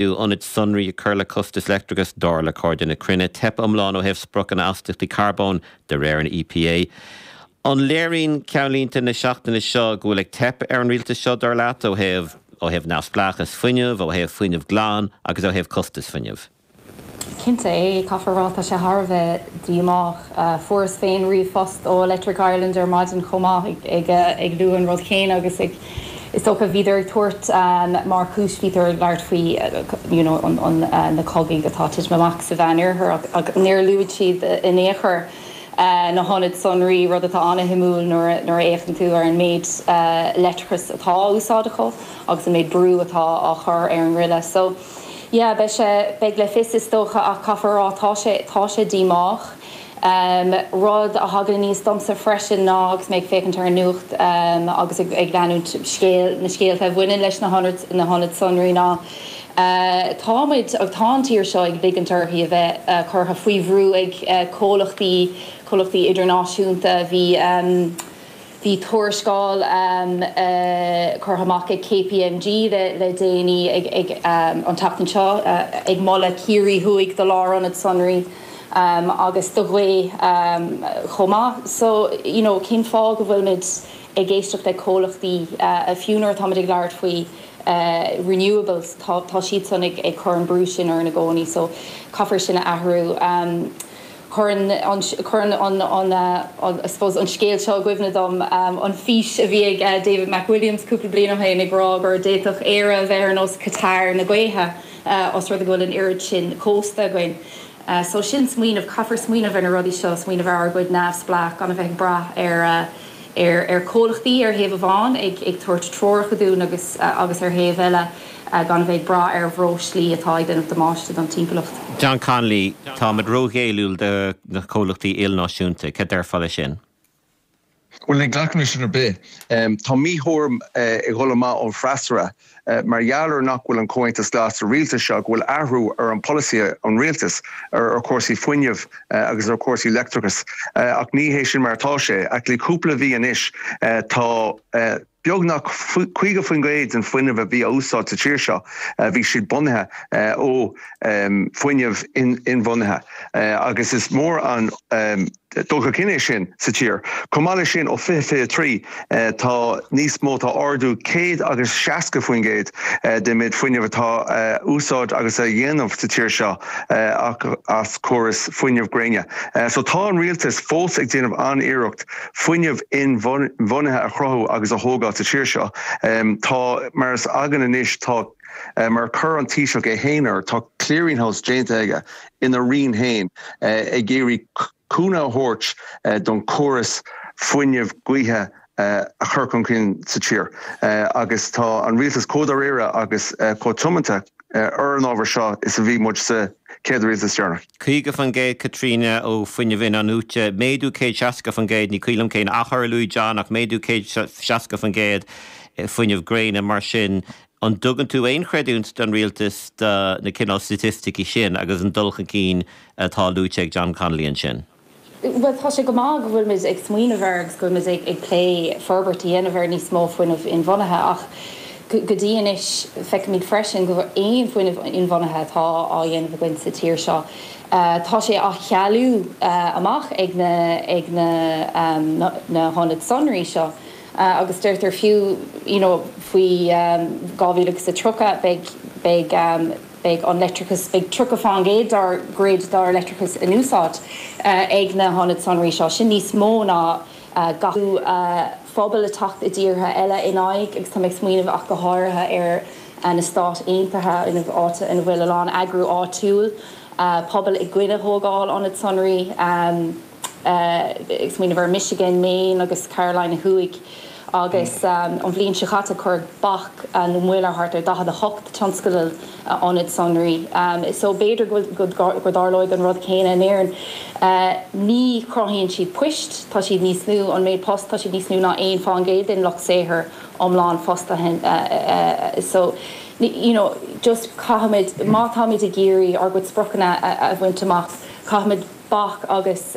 do ionaid sonraí ag cur le costas leictreachais, dar le Cairde na Cruinne, teip iomlán ó thaobh spriocanna astaíochtaí carbóin de réir an EPA. An léiríonn ceannlínte na seachtaine seo go bhfuil ag teip ar an rialtas seo, dar leat, ó thaobh ó thaobh neamhspleáchas fuinnimh, ó thaobh fuinneamh glan agus ó thaobh costais fuinnimh? Cinnte, yeah, caithfear a rá, tá sé thar a bheith díomách. Fuaireas féin ríomhphost ó Electric Ireland ar maidin chomh maith ag lua an rud chéanna agus is dócha bhíodar ag tabhairt mar chúis, bhíodar ag labhairt faoi you know na cogaidh atá ag titim amach sa Mheánoirthear ach níor luaigh siad in aon chor na hionaid sonraí, rud atá ana-shuimiúil nuair a fhéachann tú ar an méid leictreachais atá á úsáid acu agus an méid brú atá á chur ar an ngreille. So. Yeah, beidh sé, beidh le fios is dócha ach caithfear a rá tá sé, tá sé díomách. Rud a thagann aníos domsa freisin ná agus mé ag féachaint ar an nuacht agus ag ag leanúint na scéal, na scéalta a bhaineann leis na hionaid, na hionaid sonraí ná tá muid, agus tá an tír seo ag ligint uirthi a bheith curtha faoi bhrú ag comhlachtaí, comhlachtaí idirnáisiúnta. Bhí. Bhí tuarascáil curtha amach ag KPMG le déanaí, an tseachtain seo, ag moladh Ciarraí Thuaidh do lárionad sonraí agus do ghaoth chomh maith. So you know cén fáth go bhfuilimid ag éisteacht le comhlachtaí, fiú nuair atáimid ag labhairt faoi renewables, tá siadsan ag cur an brú sin orainn i gcónaí. So caithfear sin a athrú. Cuireann an, cuireann an, an an, I suppose, an scéal seo i gcuimhne dom an fhís a bhí ag David McWilliams cúpla blian ó shin ag rá gur d'fhéadfadh Éire a bheith ar nós Qatar na gaoithe os rud é go bhfuil an oiread sin cósta againn. So sin smaoineamh, caithfear smaoineamh ar na rudaí seo, smaoineamh ar ár gcuid neamhspleách, gan a bheith ag brath ar, ar ar comhlachtaí ar thaobh amháin ag ag tabhairt treoracha dúinn agus agus ar thaobh eile gan a bheith ag brath ar bhreoislí atá ag déanamh damáiste don timpeallacht. John Connolly, Táimid ró-ghéilliúil do na comhlachtaí ilnáisiúnta. Cad déarfá le sin? Bhuel, ní ghlacaimse le sin ar bith. Tá míthuairim ag dhul amach ón bhfreasúra. Mar gheall ar nach bhfuil an Comhaontas Glas sa rialtas seo, go bhfuil athrú ar an polasaí an rialtas ar chúrsaí fuinneamh agus ar chúrsaí leictreachas. Ach ní hé sin mar atá sé. Actually cúpla mhí anois tá beagnach 50% den fuinneamh a bhí á úsáid sa tír seo a bhí siad bunaithe ó fuinneamh inbhunaithe agus is mór an dul chun cinn é sin sa tír. Chomh maith leis sin, ó 2023 tá níos mó tá ardú 100 agus 60% den méid fuinnimh atá á úsáid agus a dhéanamh sa tír seo as córas fuinnimh gréine. So tá an rialtas fós ag déanamh an-iarracht fuinneamh inbhuanaithe a chruthú agus a thógáil sa tír seo. Tá mar shampla againn anois tá mar chuir an Taoiseach é féin air, tá clearing house déanta aige ina roinn féin ag iarraidh cúnamh a thabhairt don chóras fuinnimh gaoithe a chur chun cinn sa tír agus tá an rialtas chomh dáiríre agus chomh tiomanta ar an ábhar seo is a bhí muid sa chéad rialtas deireanach. 50% Caitríona, ó fuinneamh in-athnuaite, méadú 160%, ní cuimhin liom cén achar a luaigh John ach méadú 160% fuinneamh gréine mar sin. An dtugann tú aon chreidiúint don rialtas do na cineál staitisticí sin agus an dul chun cinn atá luaite ag John Connolly ansin? Bhuel, tá sé go maith go bhfuilimid ag smaoineamh air agus go bhfuilimid ag plé forbairt a dhéanamh ar níos mó fuinnimh inbhuanaithe ach go dtí anois feicimid freisin go bhfuil aon fuinneamh inbhuanaithe atá á dhéanamh againn sa tír seo tá sé á chealú amach ag na hionaid sonraí seo. agus deirtear fiú you know faoi 2030 beidh beidh beidh an leictreachas beidh 30% dár grid dár leictreachas in úsáid ag na hionaid sonraí seo sin níos mó ná gach pobal ag teacht i dtíortha eile in aghaidh agus tá mé ag smaoineamh go háirithe ar na Stáit Aontaithe ina áit ina bhfuil a lán eagrú áitiúil pobail i gcoinne thógáil ionad sonraí. ag smaoineamh ar Michigan, Maine agus Carolina Thuaidh agus an bhliain seo chaite cuireadh bac nó moill ar thart ar 48 tionscadal ionad sonraí so b'fhéidir go dtarlóidh an rud céanna in Éirinn. Ní chruthaíonn siad poist, tá siad níos lú, an méid post, tá siad níos lú ná 1 faoin gcéad den lucht saothair iomlán fostaithe so you know just caithfimid, má táimid ag iarraidh ár gcuid spriocanna a bhaint amach caithfimid bac agus.